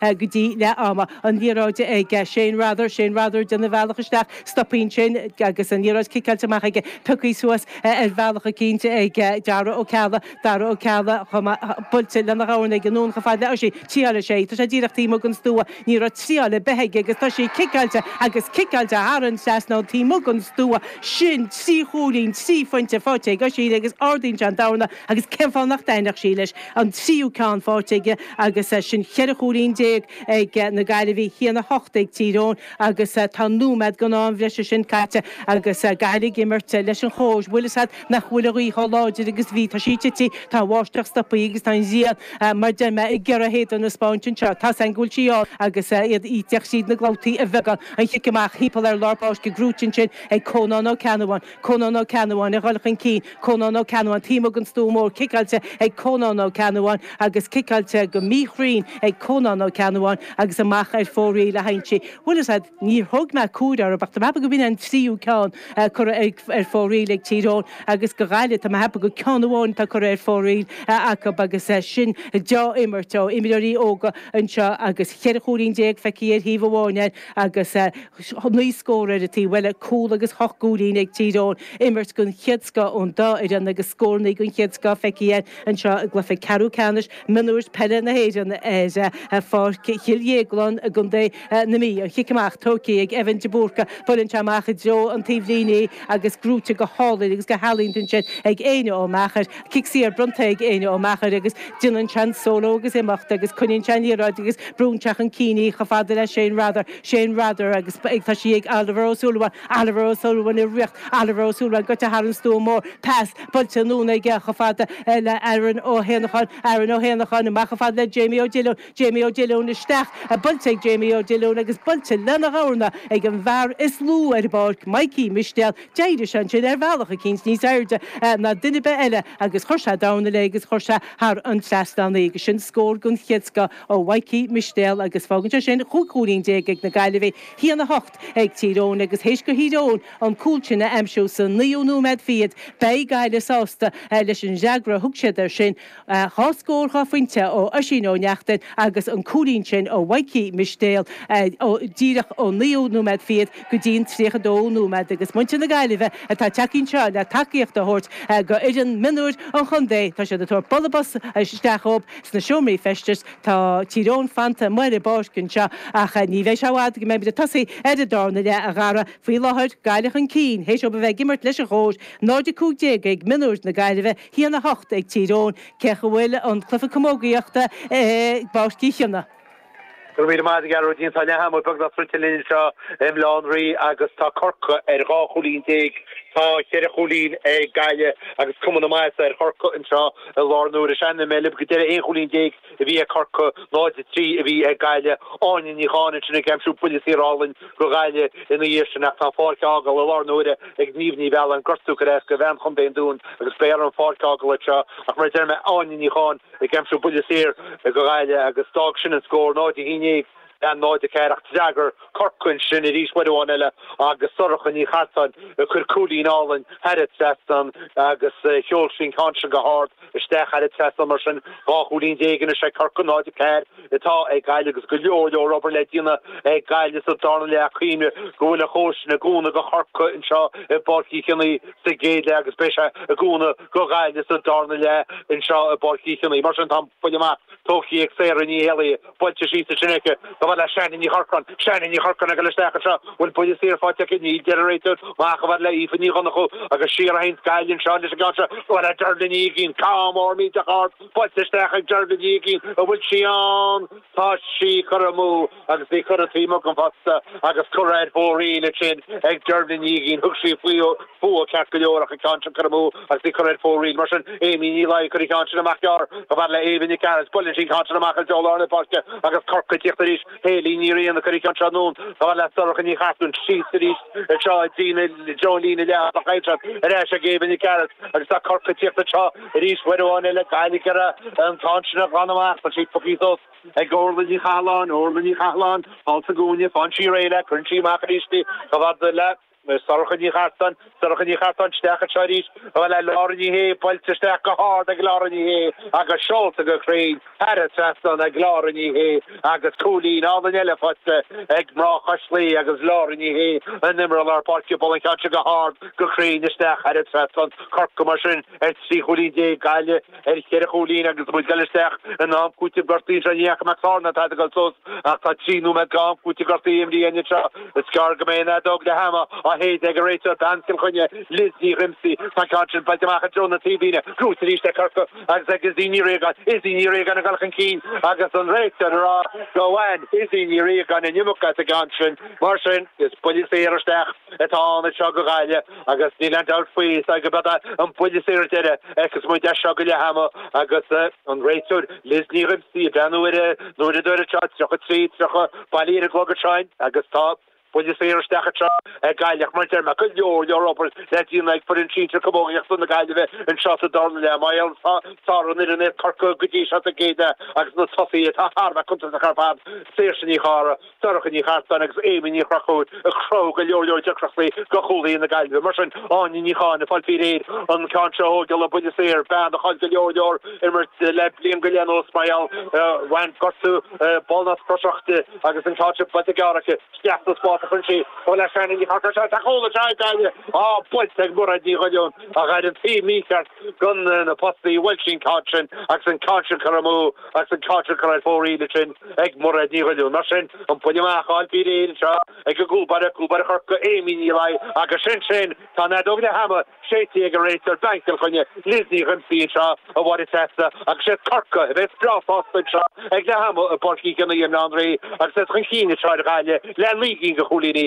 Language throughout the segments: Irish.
go dtí leath ama. An liathróid ag Shane Rather, Shane Rather ag déanamh a bhealach isteach, stopann sé ansin agus an liathróid ciceáilte amach aige, pioctha suas ar bhealach eicínt ag Dara Ó Ceallaigh, Dara Ó Ceallaigh chomh maith, buailte lena dhorna aige anonn chomh fada le Oisín, triálfaidh sé, tá sé díreach taobh amuigh den stua, ní raibh triáil ar bith aige agus tá sí ciceáilte agus ciceáilte thar an trasnán taobh amuigh den stua, sin trí chúilín, trí phointe faighte ag Oisín agus ardaíonn sé an dorna, Agus cén fáth nach dtaitneodh sí leis an tríú ceann faighte aige agus sin cheithre chúilín déag ag na Gaillimhigh, 1-8 ag Tír Eoghain agus tá nóiméad den am breise sin caite agus Gaillimh ag imirt leis an chóir. Bhfuil a fhios agat nach bhfuil an ghaoth chomh láidir agus a bhí. Tá sí ag titim, tá an bháisteach stoptha agus tá an ghrian, mar deir mé, ag iarraidh a héadan a spáint anseo. Tá's againn go bhfuil sí ann agus í ag teacht tríd na clabhtaí ar bheagán. An chic amach thimpeall ar lár páirce, gnóite ansin ag Conán Ó Ceannabháin. Conán Ó Ceannabháin ag dhul chun cinn Conán Ó Ceannabháin taobh amuigh den stua mór ciceáilte ag Conán Ó Ceannabháin agus ciceáilte go míchruinn ag Conán Ó Ceannabháin agus amach ar fóraoil a théann sí bhfuil a fhios agat níor thug mé comhaireamh orthu ach tá mé ceapadh go b'in an tríú ceann a cuireadh ar fóraoil ag Tír Eoghain agus go Ghaillimh tá mé ceapadh go ceann amháin atá curtha ar fóraoil acu agus sin deá-imirt ó imreoirí óga anseo agus cheithre chúilín déag feicthe ar thaobh amháin ar agus naoi scór ar an taobh eile, cúl agus hocht gcúilín ag Tír Eoghain, imirt den chéad scoth ón dá fhoireann agus scórannaí den chéad scoth feicthe air anseo i gcluiche ceathrú ceannais mionúir peile na hÉireann ar Pháirc Chill Dhéagláin i gContae na Mí. An chic amach tógtha ag Evan de Búrca, buaileann sé amach i dtreo an taobhlíne é agus gnóite go hálainn agus go healaíonta ansin ag Éinne Ó Meachair, Cic saor bronnta ag Éinne Ó Meachair agus déanann sé an solo agus imeacht agus coinníonn sé an liathróid agus brúnn sé chun cinn í chomh fada le Shane Rather, Shane Rather agus ag tá sí ag Oliver Ó Súilleabháin, Oliver Ó Súilleabháin ag tíocht Oliver Ó Súilleabháin goite thar an stua mór, pas buailte anonn aige chomh fada le Aaron Ó hÉanacháin, Aaron Ó hÉanacháin amach chomh fada le Jamie Ó Diolúin, Jamie Ó Diolúin isteach, buailte ag Jamie Ó Diolúin agus buailte lena dhorna ag an bhfear is lú ar an bpáirc, Mikey Mistéal, d'éirigh sé ansin ar bhealach eicínt níos airde ná duine ar bith eile agus chuir sé dorna léi agus chuir sé thar an trasnán í agus sin scór den chéad scoth ó Mhikey Mistéal agus fágann sé sin chúig chúilín déag ag na Gaillimhigh, 1-8 ag Tír Eoghain agus théis go Thír Eoghain an cúl sin a aimsiú sa naoú nóiméad fichead beidh Gaillimh sásta leis an fhreagra a thug siad air sin. Dhá scór dhá phointe ó Oisín Ó Neachtain agus an cúilín sin ó Mhikey Mistéal díreach ón naoú nóiméad fichead go dtí'n tríocha dó nóiméad agus muintir na Gaillimhe atá tagtha anseo le tacaíocht a thabhairt go fhoireann mionúir an chontae tá siad ag tabhairt bualadh bos isteach dhób sna seomraí feistis. Tá Tír Eoghain fanta amuigh ar an bpáirc anseo ach ní bheidh sé i bhfad go mbeimid ag tosaí ar an darna leath, a Dhara. Faoi láthair Gaillimh chun cinn théis dóibh a bheith ag imirt leis an chóir, 0-15 ag mionúir na Gaillimhe, hAon a hocht ag Tír Eoghain, cé go bhfuil an cluiche camógaíochta i bPáirc Uí Chionnaith. Go raibh míle maith agat, Gearóidín. Tá leath ama beagnach druidte linn anseo i mBaile Átha an Rí agus tá Corcaigh ar dhá chúilín déag. Tá cheithre chúilín ag Gaillimh agus cuma na maitheasa ar Chorcaigh anseo i láthair na huaire. San am a bhí mé libh go deireadh aon chúilín déag. a bhí ag Corcaigh, 0 a 3 a bhí ag Gaillimh, Áine Ní Chatháin ansin ag aimsiú buille saor álainn go Gaillimh ina dhiaidh sin ach tá an pháirc á fágáil i láthair na huaire ag Niamh Ní Mhealláin, gortú gur éasca, bhean Chontae an Dúin agus beidh uirthi an pháirc a fhágáil anseo ach mar a deir mé, Áine Ní Chatháin ag aimsiú buille saor go Gaillimh agus d'fhág sin an scór, 0 a 11. le 0 a 4 ach d'fhreagair Corcaigh ansin arís uair amháin eile agus Sorcha Ní Chartáin ag cur cúilín álainn thar an trasnán agus sheol sí an ceann sin go hard isteach thar an trasnán mar sin dhá chúilín déag anois ag Corcaigh 0 a 4 atá ag Gaillimh agus go leor leor obair le déanamh ag Gaillimh sa darna leath ag cuimhneamh go bhfuil an chóir sin i gcúnamh go Chorcaigh anseo i bPáirc Uí Chionnaith sa gcéad leath agus beidh sé i gcúnamh go Gaillimh sa darna leath anseo i bPáirc Uí Chionnaith mar sin tá an buille amach Tógtha ag Sarah Ní Éalaí. Buailte síos ansin aici. Chomh fada le Shannon Ní Chorcráin. Shannon Ní Chorcráin ag dul isteach anseo. Bhfuil buille saor faighte aici. Níl, deir an réiteoir. Amach chomh fada le Aoife Ní Dhonnachú. Agus siar a théanns Gaillimh anseo leis an gceann seo. Chomh fada le Dervla Ní Uigín. Ceann mór millteach ard. Buailte isteach ag Dervla Ní Uigín. An bhfuil sí ann? Tá sí curtha amú. Agus í curtha taobh amuigh den phosta agus curtha ar fóraoil ansin ag Dervla Ní Uigín. Thug sí fúithi ceart go leor ach an ceann sin curtha amú agus í curtha ar fóraoil. Mar sin Amy Ní Laoi ag cur an cheann sin amach gearr. Chomh fada le Ava Nic Gearailt buailfidh sí an ceann sin amach i dtreo lár na páirce agus Corcaigh ag tíocht arís. Hayley Ní Riain ag cur an ceann seo anonn. Chomh fada le Sorcha Ní Chartáin síos arís anseo i dtí na dtreo líne leath ach faighte ar ais ag Ava Nic Gearailt agus tá Corcaigh ag tíocht anseo arís. Uair amháin eile Gaillimh ag iarraidh an ceann sin a ghlanadh amach. Tá sí pioctha suas. ag Órla Ní Chathalláin, Órla Ní Chathalláin, thall sa gcúinne, faigheann sí réidh léi, cuireann sí amach aríst í, chomh fada le Sorcha Ní Chartáin, Sorcha Ní Chartáin, isteach anseo arís, chomh fada le Laura Ní Shé, buailte isteach go hard ag Laura Ní Shé, agus seolta go cruinn, thar an trasnán ag Laura Ní Shé, agus cúilín álainn eile faighte ag mná Chois Laoi, agus Laura Ní Shé an t-imreoir lár páirce, ag bualadh an ceann seo go hard, go cruinn, isteach, thar an trasnán, Corcaigh mar sin. ar trí chúilín déag, Gaillimh ar cheithre chúilín agus muid ag dul isteach in am cúitimh gortaithe anseo. Ní Eachaidh Mac Sárna atá ag dul suas ach tá trí nóiméad go am cúitimh gortaithe imrithe againn anseo. Is gearr go mbeidh an fheadóg leath ama á séideadh ag an réiteoir bean Chill Chainnigh, Liz Ní Dhíomsaigh. Tá an ceann sin buailte amach i dtreo na taobhlíne. Buaite arís ag Corcaigh agus ag Izzy Ní Riagáin. Izzy Ní Riagáin ag dul chun cinn agus an réiteoir ag rá gur bhain Izzy Ní Riagáin an iomarca as an gceann sin. Mar sin, is buille saor isteach atá ann anseo go Gaillimh. Agus níl aon dabht faoi, is dóigh gurb é an buille saor deiridh a fheicfeas muid as seo go leath ama agus an réiteoir Liz Ní Dhíomasaigh ag breathnú ar an uaireadóir anseo, 33, 30, bailithe ar an gclog againn agus tá buille saor isteach anseo ag Gaillimh ach mar a deir mé, go leor, leor obair le déanamh ag foireann sinsir camógaíochta na Gaillimhe anseo sa dara leath mar gheall is fearr an fhoireann é Corcaigh go dtí seo sa gcéad leath agus na tosaithe atá thar a bheith cuntasach ar fad, Saoirse Ní Chárthaigh. Sorcha Nic Artáin agus Amy Ní Chonchúir a chruthaigh go leor leor deacrachtaí do chúlaithe na Gaillimhe. Mar sin, Áine Ní Chatháin ag fáil faoi réir an ceann seo a thógáil, buille saor, bean a chaill go leor leor imirt le bliain go leith anuas mar gheall gur bhain gortú ballnasc croiseach di agus an ceann seo buailte gearr aici. Isteach sa spás a chuireann sí é le Shannon Ní Chorcráin sa chúl is ea a gaire á baint ag Mairéad Ní Dhiolúin ach ar an taobh mícheart de na postaí bhuail sí an ceann sin agus an ceann sin curtha amú agus an ceann sin curtha ar fóraoil ansin ag Mairéad Ní Dhiolúin mar sin an buille amach ag fáil faoi réir anseo ag an gcúl báire cúl báire Chorcaí Amy Ní Laoi agus sin sin tá an fheadóg leath ama séidte ag an réiteoir bean Chill Chainnigh Liz Ní Dhíomasaigh anseo a Mháire Treasa agus is iad Corcaigh a bheas breá sásta anseo ag leath ama i bPáirc Uí Chionnaith i mBaile Átha an Rí agus iad chun cinn anseo ar Ghaillimh le naoi gcinn de chúilíní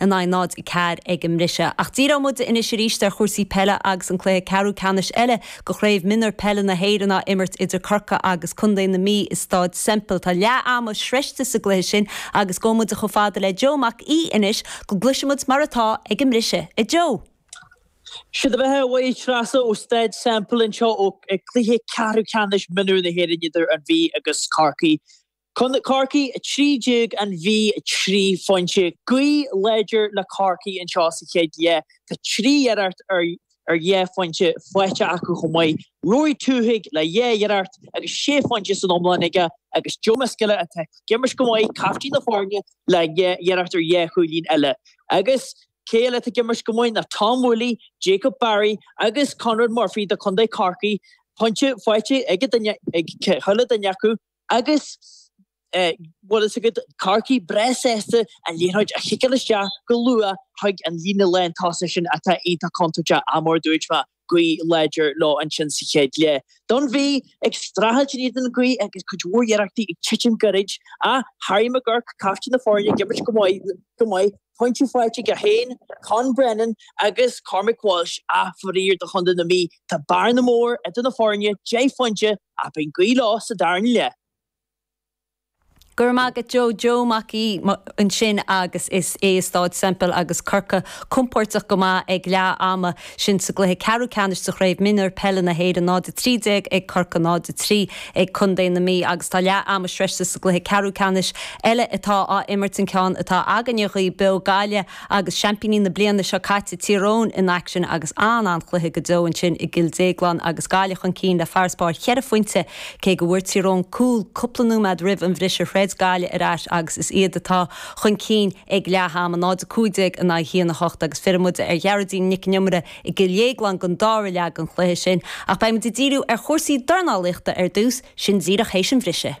in aghaidh 0, 4 ag an mbriseadh. Ach díreoidh muid anois arís ar chúrsaí peile agus an cluiche ceathrú ceannais eile de Chraobh Mionúr Peile na hÉireann á imirt idir Corcaigh agus Contae na Mí i Stáid Semple. Tá leath ama sroichte sa gcluiche sin agus gabhfaidh muid chomh fada le Joe Mac Aoidh anois go gcloise muid mar atá ag an mbriseadh. A Joe. Sé do bheatha a Mháire Treasa ó Stáid Semple anseo ag cluiche ceathrú ceannais mionúr na hÉireann idir An Mhí agus Corcaigh. Corcaigh 13 An Mhí 3 phointe, gaoth láidir le Corcaigh anseo sa chéad leath Tá trí iarracht ar dhá phointe faighte acu chomh maith. Rory Twohig le dhá iarracht agus sé phointe san iomlán aige agus Joe Miskella atá ag imirt go maith, caiftín na foirne, le dhá iarracht ar dhá chúilín eile. Agus cé eile atá ag imirt go maith ná Tom Whooley, Jacob Barry agus Conrad Murphy do Chontae Chorcaí. Pointe faighte ag chuile duine acu. Agus bhfuil fhios agat, Corcaigh breá sásta an liathróid a chiceáil isteach go luath chuig an líne lán tosaigh sin atá iontach contúirteach ach mar a dúirt mé, gaoth láidir leo ansin sa chéad leath. Don Mhí, ag streachailt in éadan an ghaoth agus cuid mhór iarrachtaí ag titim gairid ach Harry McGuirk, caiftín na foirne, ag imirt go maith, pointí faighte aige féin, Conn Brennan agus Cormac Walsh ach faraor do chontae na Mí, tá bearna mór idir na foirne, deich phointe. Ach beidh gaoth leo sa darna leath. Go raibh maith agat Joe Joe Mac Aoidh ansin agus is é i Stáid Semple agus Corcaigh compóirteach go maith ag leath ama ansin sa gcluiche ceathrú ceannais sa Chraobh Mionúir Peile na hÉireann 0-13 ag Corcaigh 0-3 ag Contae na Mí agus tá leath ama sroichte sa gcluiche ceathrú ceannais eile atá á imirt an ceann atá againne dhaoibh beo, Gaillimh Agus seaimpíní na bliana seo caite Tír Eoghain in aicsean agus an-an-chluiche go deo ansin i gCill Déaglán agus Gaillimh chun cinn le farasbarr cheithre phointe, cé go bhfuair Tír Eoghain cúl cúpla nóiméad roimh an bhriseadh throid Gaillimh ar ais agus is iad atá chun cinn ag leath ama, 0-15 in aghaidh 1-8 agus fillfidh muid ar Ghearoidín Nic an Iomaire i gCill Dhéagláin don dára leath den chluiche sin. Ach beidh muid ag díriú ar chúrsaí dornálaíochta ar dtús, sin díreach théis an bhrisidh.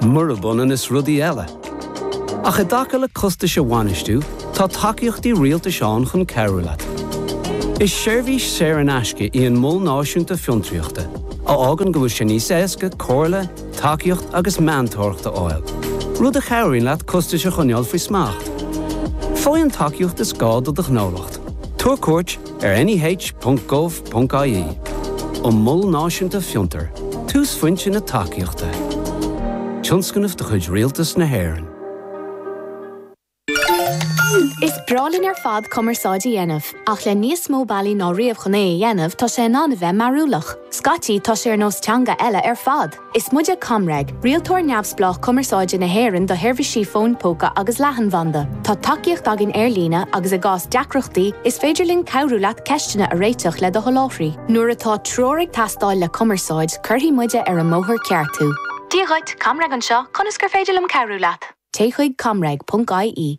murab ionann is rudaí eile. Ach i dtaca le costais a bhainistiú, tá tacaíochtaí rialtais ann chun cabhrú leat. Is seirbhís saor in aisce í an Mol Náisiúnta Fiontraíochta, a fhágann go bhfuil sé níos éasca comhairle, tacaíocht agus meantóireacht a fháil, rud a chabhraíonn leat costais a choinneáil faoi smacht. Faigh an tacaíocht is gá do do ghnólacht. Tabhair cuairt. ar neh.gov.ie An Mol Náisiúnta Fiontar, túsphointe na tacaíochta. Tionscnamh de chuid Rialtas na hÉireann. Is breá linn ar fad cumarsáid a dhéanamh, ach le níos mó bealaí ná riamh chun é a dhéanamh, tá sé in ann a bheith mearúlach. Scaití, tá sé ar nós teanga eile ar fad. Is muide ComReg, rialtóir neamhspleách cumarsáide na hÉireann do sheirbhísí fóin póca agus leathanbhanda. Tá tacaíocht againn ar líne agus i gcás deacrachtaí, is féidir linn cabhrú leat ceisteanna a réiteach le do sholáthraí. Nuair atá treoir ag teastáil le cumarsáid, cuirfidh muide ar an mbóthar ceart thú. Dia dhuit, ComReg anseo, conas gur féidir liom cabhrú leat? Téigh chuig comreg.ie.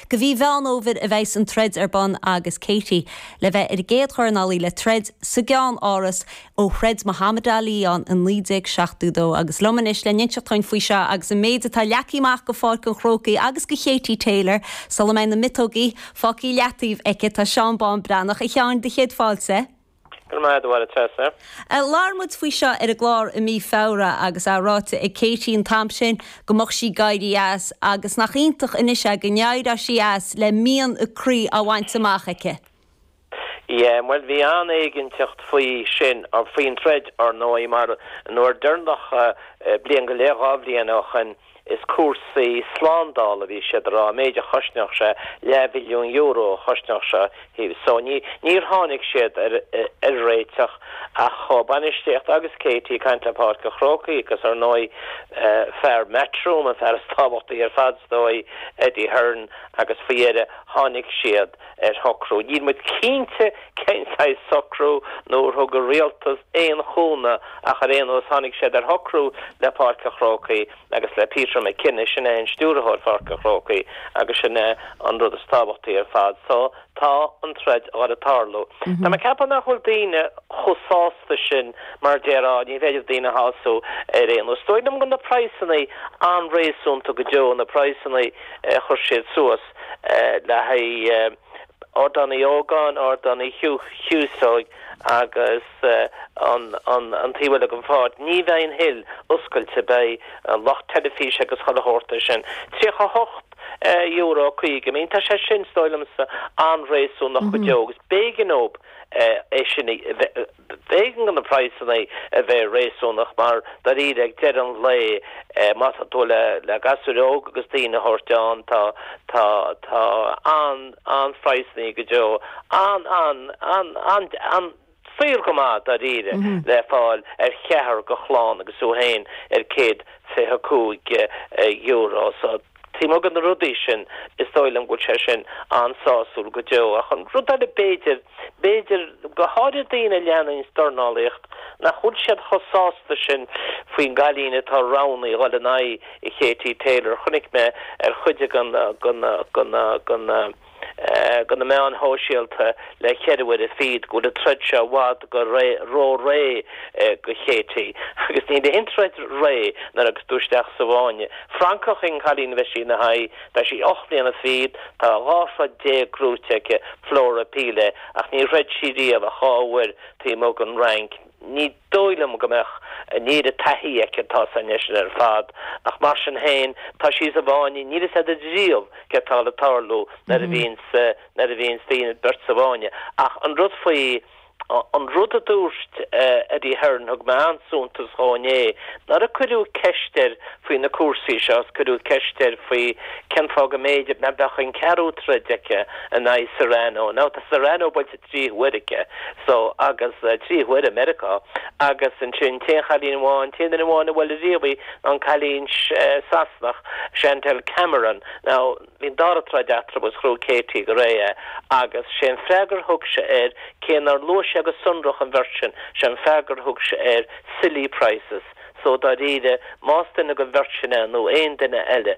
I mí Mheán Fómhair a bheas an troid ar bun agus Katie le bheith ar an gcéad dornálaí le troid sa gCeannáras ó throid Muhammad Ali ann i 1972 agus liom anois le n-inseacht dúinn faoi seo agus an méid atá leagtha amach go Pháirc an Chrócaigh agus go Katie Taylor sula mbeidh na miotóga fágtha i leataobh aici tá Seán Bán Breathnach a Sheáin, do chéad fáilte Go raibh maith agat a Mháire Treasa. Labhair muid faoi seo ar an gclár i mí Feabhra agus é ráite ag Katie an t-am sin go mbeadh sí ag éirí as agus nach iontach anois é go n-éireoidh sí as le mian a croí á bhaint amach aici. Yeah, bhuel bhí an-éiginnteacht faoi sin, faoin troid, ar ndóigh, mar nuair deireanach, bliain go leith, dhá bhliain ó shin, Is cúrsaí slándála a bhí siad a rá, an méid a chosnódh sé, leath mhilliún euro a chosnódh sé seo, so ní, níor tháinig siad ar, ar réiteach ach a bainistíocht agus Katie ag caint le Páirc an Chrócaigh agus ar ndóigh fear Matchroom, an fear is tábhachtaí ar fad is dóigh, Eddie Hearn, agus faoi dheireadh tháinig siad ar shocrú. Níl muid cinnte cén saghas socrú nó ar thug an Rialtas aon chúnamh ach ar aon nós tháinig siad ar shocrú le Páirc an Chrócaigh agus le Peter McKenna, sin é Stiúrthóir Pháirc an Chrócaigh agus sin é an rud is tábhachtaí ar fad. So tá an troid ag gabháil ag tarlú. Tá mé ag ceapadh nach bhfuil daoine chomh sásta sin mar déarfá ní féidir daoine a shású ar aon nós. Is dóigh liom go na praghsanna an-réasúnta go deo, na praghsanna a chuir siad suas. Acht le haghaidh Ardán Uí Ógáin, Ardán Uí Chíosóig agus an taobh uilig ar fad. Ní bheidh an Hill oscailte, beidh an lucht teilifíse agus chuile shórt ar sin. €38 50, I mean, tá sé sin is dóigh liomsa an-réasúnach go deo agus b'éigean dóibh é sin a B'éigean do na praghsanna a bheith réasúnach mar, dairíre, ag deireadh an lae má tá tú le gasúir óg agus daoine a thabhairt ann tá tá an an-phraghsanna go deo an an an an an suíochán maith, dairíre, le fáil ar cheathrar de chlann agus thú féin ar céad fiche cúig euro. So. Taobh amuigh de na rudaí sin is dóigh liom go bhfuil sé sin an-sásúil go deo. Ach an rud eile b'fhéidir, b'fhéidir, go háirithe daoine a leananns dornálaíocht, nach bhfuil siad chomh sásta sin faoin gcailín atá roghnaithe a dhul in aghaidh Katie Taylor. Chonaic mé ar chuid den de na meáin shóisialta le cheithre huaire fichead go bhfuil an troid seo i bhfad go ró-réidh do Katie agus níl aon troid réidh nuair a ghabhfas tú isteach sa bhfáinne. Francach í an cailín a bheidh sí ina haghaidh. Tá sí ocht mbliana fichead, tá dhá throid déag gnóthaithe aici, Flora Pili, ach níor throid sí riamh ach dhá uair taobh amuigh den Fhrainc. Ní dóigh liom go mbeadh an oiread taithí aici atá sa seisean ar fad ach mar sin féin tá sí sa bhfáinne níl a fhios agat ariamh céard atá le tarlú nuair a bhíonns nuair a bhíonns beirt sa bhfáinne. Ach an rud faoi an rud a dúirt Eddie Hearn thug mé an-suntas dhó inné nuair a cuireadh ceist air faoi na cúrsaí seo is cuireadh ceist air faoi cén fáth go mb'fhéidir nach mbeadh an ceathrú troid aici in aghaidh Serrano. Now tá Serrano buailte trí huaire aici so agus trí huaire i Meiriceá agus ansin an t-aon chailín amháin, an t-aon duine amháin a bhuail ariamh í ná an cailín Sasanach, Chantelle Cameron. Now bhí an dara troid eatarthu agus ghnóthaigh Katie go réidh é agus sé an freagra a thug sé air, cé nár luaigh sé go sonrach an bheirt sin, sé an freagra a thug sé air silly prices. So dáiríre más duine den bheirt sin é nó aon duine eile,